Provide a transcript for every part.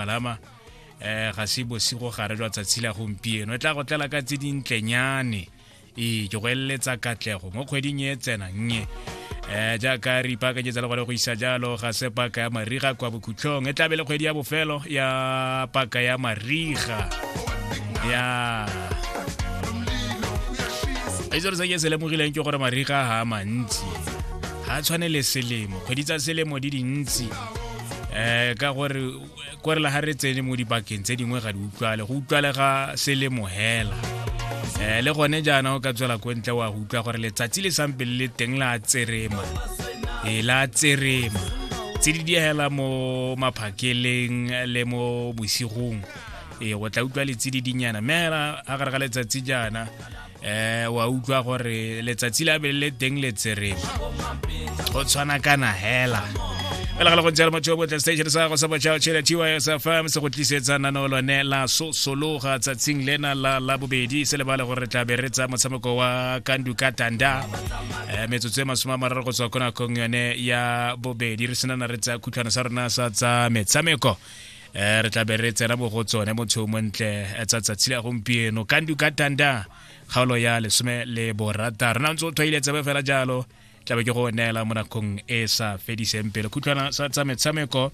palama um ga se bosigo gare jwa tsatsi la gompieno e tla go tlela ka tse dintlenyane ee ke go eleletsa katlego mo kgweding e tsena nnye um jaaka re ipakanyetsa le gone go isa jalo ga se paka ya mariga kwa bokhutlhong e tlabe le kgwedi ya bofelo ya paka ya mariga ya e se re sa ke se lemogileng ke gore mariga ga a mantsi ga a tshwane le selemo kgwedi tsa selemo di dintsi eh ka gore kore la ga re tsene mo dibakeng tse dingwe ga di utlwale go utlwale ga selemo hela eh le gone jaana o ka tswela ko ntle wa go utlwa gore letsatsi le sampe le le teng la tserema e la tserema tse di diegela mo maphakeleng le mo bosigong e go tla utlwa letsedi dinyana mme a gare ga letsatsi jaana eh wa utlwa gore letsatsi la bele le teng le tserebe go tshwana kana hela fela ga le go jalo motho yo botle station sa go sa botšhao tšhela gys fm se go tlisetsa nano lone la sosologa tsatsing lena la la bobedi se lebale gore re tla be re tsa motshameko wa kandu ka tanda um metsotso e masome a mararo go tswa ko nakong yone ya bobedi re senana re tsa khutlhwana sa rona sa tsa metshameko eh re tla be re tsena mo go tsone motho o montle eh, tsa tsatsi la gompieno kandu ka tanda kgaolo ya lesome le borata re na ntse o tshwaile tsebe fela jalo tlabe ke go neela mo nakong e sa fediseng pele khutlwana sa tsa metshameko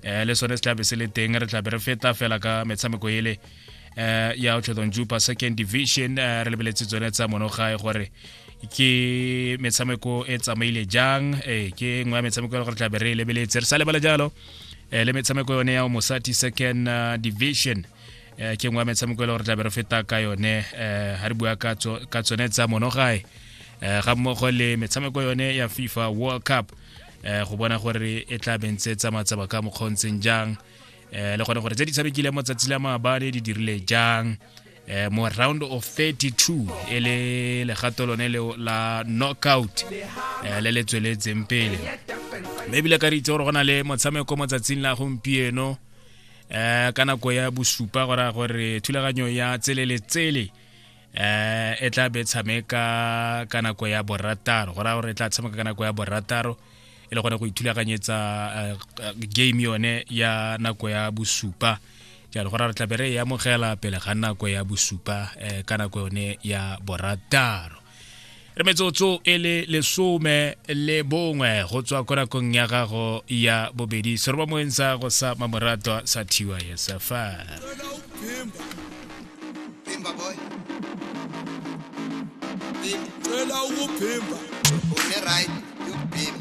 um le sone se tlabe se le teng re tlabe re feta fela ka metshameko ele um ya otlhodong jupa second division um re lebeletse tsone tsa monogae gore ke metshameko e tsamaile jang ee ke nngwe ya metshameko e le gore tlabe re e lebeletse re sa lebala jalo eh, le metshameko yone ya mosati second uh, division eh, ke nngwe ya metshameko e le gore tlabe re feta ka yone eh, ga re bua ka tsone tsa monogae eh, ga mmogo le metshameko yone ya fifa world cup eh, go bona gore e tla bentse tsa matsaba ka mokgontseng jang eh, le gone gore tse di tshamekileng mo tsatsi la maabane di dirile jang eh, mo round of 32 e le legato lone leo la knockout eh, le le tsweletseng pele mme ebile ka re itse gore go na le motshameko mo tsatsing la gompieno eh ka nako ya bosupa go raya gore thulaganyo ya tsele le tsele eh e tla be tshameka ka nako ya borataro go raya gore e tla tshameka ka nako ya borataro e le gone go ithulaganyetsa eh, eh, game yone ya nako ya bosupa jalo gore re tlabe re e amogela pele ga nako ya bosupa eh, ka nako yone ya borataro re metsotso e le lesome le bongwe go tswa ko nakong ya gago ya bobedi seroba moeng sa go sa mamorato sa thiwa yesafa Cela ukuphimba. Ungeright, yokubhimba.